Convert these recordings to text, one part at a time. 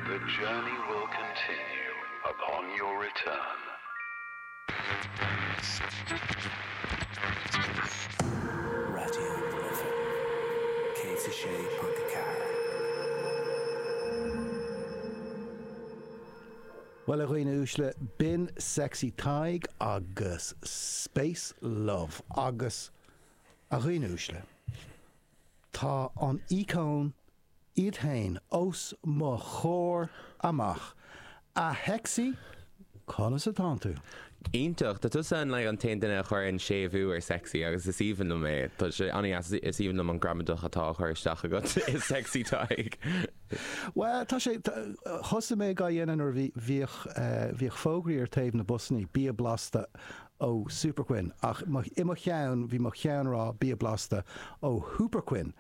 The journey will continue upon your return. Raidió na Life 106.4. Bhuel, a dhaoine uaisle, b'in Sexy Tadhg agus Space Love. Agus, a dhaoine uaisle, Tá an íocón iad féin os mo chomhair amach. A Hexie, conas atánn tú? Iontach. Tá tusa an an t-aon duine a chuireann séimhiú ar sexy agus is aoibhinn liom é. Tá sé an-deas. Is aoibhinn liom an gramadach atá á chur isteach agat i Sexy Tadhg. Bhuel, tá sé, thosaigh mé á dhéanamh nuair a bhí bhíodh fógraí ar thaobh na busanna, bia blasta ó Super Quinn ach i mo cheann bhí mo cheann ag rá bia blasta ó Hooper Quinn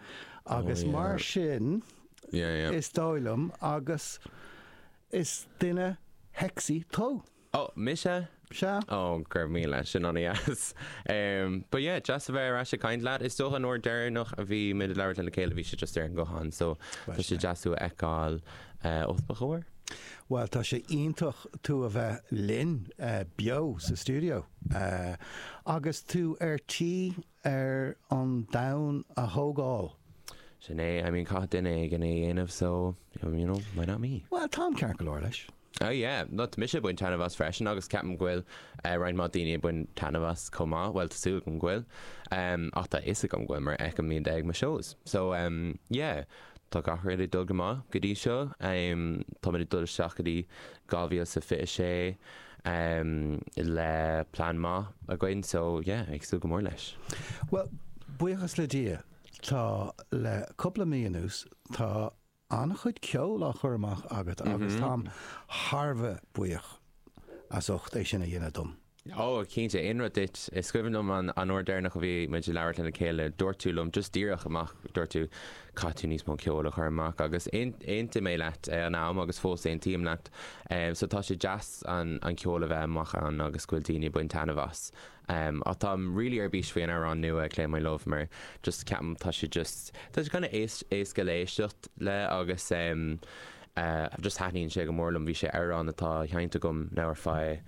agus mar sin is dóigh liom agus is duine shexy tú. Ó, mise? Sea. Ó, go raibh míle, sin an-deas. But yeah, deas a bheith ar ais ag caint leat. Is dócha an uair deireanach a bhí muid ag labhairt lena chéile bhí sé just ar an nguthán so tá sé deas tú a fheiceáil os mo chomhair. Bhuel, tá sé iontach tú a bheith linn beo sa stiúideo agus tú ar tí ar an domhan a thógáil. Sin é, I mean, caithfidh duine éigin é a dhéanamh so, you know, why not me? Bhuel, táim ceart go leor leis. Oh yeah, no, tá mise ag baint taitneamh as freisin agus ceapaim go bhfuil roinnt mhaith daoine ag baint taitneamh as chomh maith, bhuel, tá súil agam go bhfuil, ach tá a fhios agam go bhfuil mar fheicim iad ag mo shows. So, yeah, Tá gach rud ag dul go maith go dtí seo. Táimid ag dul isteach go dtí 2026 le plean maith againn so yeah, ag súil go mór leis. Bhuel, buíochas le Dia, tá, le cúpla mí anuas, tá an-chuid ceoil á chur amach agat agus táim thar a bheith buíoch as ucht é sin a dhéanamh dom. Ó, cinnte, aon rud duit. Is cuimhin liom an uair deireanach a bhí muid ag labhairt lena chéile, dúirt tú liom just díreach amach, dúirt tú, 'Caithfidh tú níos mó ceoil a chur amach. Agus aontaigh mé leat ag an am agus fós aontaím leat. So tá sé deas an ceol a bheith amach ann agus go bhfuil daoine ag baint taitneamh as. Ach táim really ar bís faoi an amhrán nua, I Claim My Love, mar just ceapaim tá sé just, tá sé kind of éasca le héisteacht leis agus. ahh just thaitníonn sé go mór liom, bhí sé amhrán atá seinnte agam now ar feadh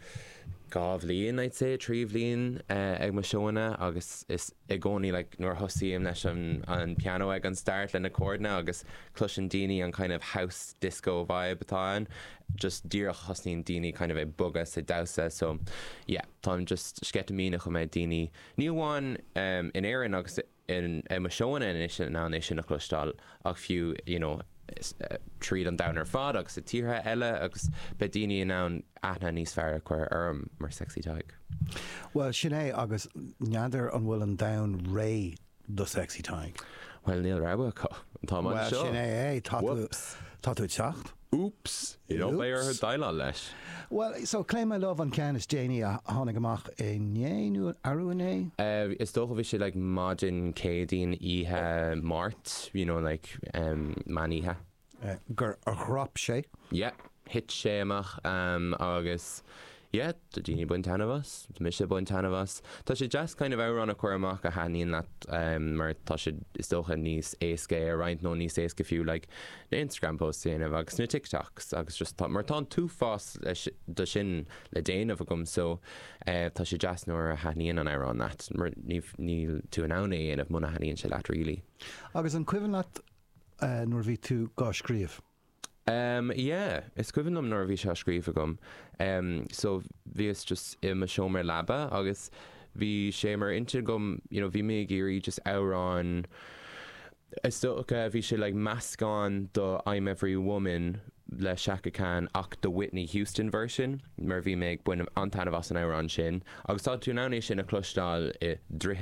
dhá bhliain I'd say, trí bhliain eh ag mo seóanna agus is i gcónaí like nuair a thosaím leis an an piano ag an start le na córdanna agus cloiseann daoine an kind of house disco vibe atá ann just díreach thosnaíonn daoine kind of ag bogadh 's ag damhsa so yeah táim just sceitimíneach go mbeidh daoine ní amháin ehm in Éirinn agus i i mo sheónna anois in ann é sin a chloisteáil ach fiú you know tríd an domhan ar fad agus i dtíortha eile agus beidh daoine in ann aithne níos fearr a chur orm mar Sexy Tadhg. Bhuel, sin é agus n'fheadar an bhfuil an domhan réidh do Sexy Tadhg? Bhuel, níl rogha acu. Tá muid anseo. Bhuel, sin é. Tá tú ag teacht. Úps! Níl beidh orthu déileáil leis. Bhuel, so Claim My Love an ceann is déanaí a tháinig amach inné, nó arú inné? Is dócha bhí sé like maidin Céadaoin, oíche Máirt, you know like em meán oíche. gur dhrop sé. Yeah, thit sé amach em agus Yeah, tá daoine ag baint taitneamh as, tá mise ag baint taitneamh as. Tá sé deas kind of amhrán a chur amach a thaitníonn leat em mar tá sé is dócha níos éasca é a roinnt nó níos éasca fiú like na Instagram posts a dhéanamh agus na TikToks agus just tá mar tá an t-uafás de sin le déanamh agam so eh tá sé deas nuair a thaitníonn an amhrán leat mar ní níl tú in ann é a dhéanamh muna thaitníonn sé leat really. Agus an cuimhin leat eh nuair a bhí tú gá scríobh? Em, yeah, is cuimhin liom nuair a bhí sé á scríobh agam, em, so bhíos just i mo seomra leaba agus bhí sé mar intinn agam, you know, bhí mé ag iarraidh just amhrán, is dócha bhí sé like meascán de I'm Every Woman le Chaka Khan ach the Whitney Houston version mar bhí mé ag baint an-taitneamh as an amhrán sin agus tá tú in ann é sin a chloisteáil i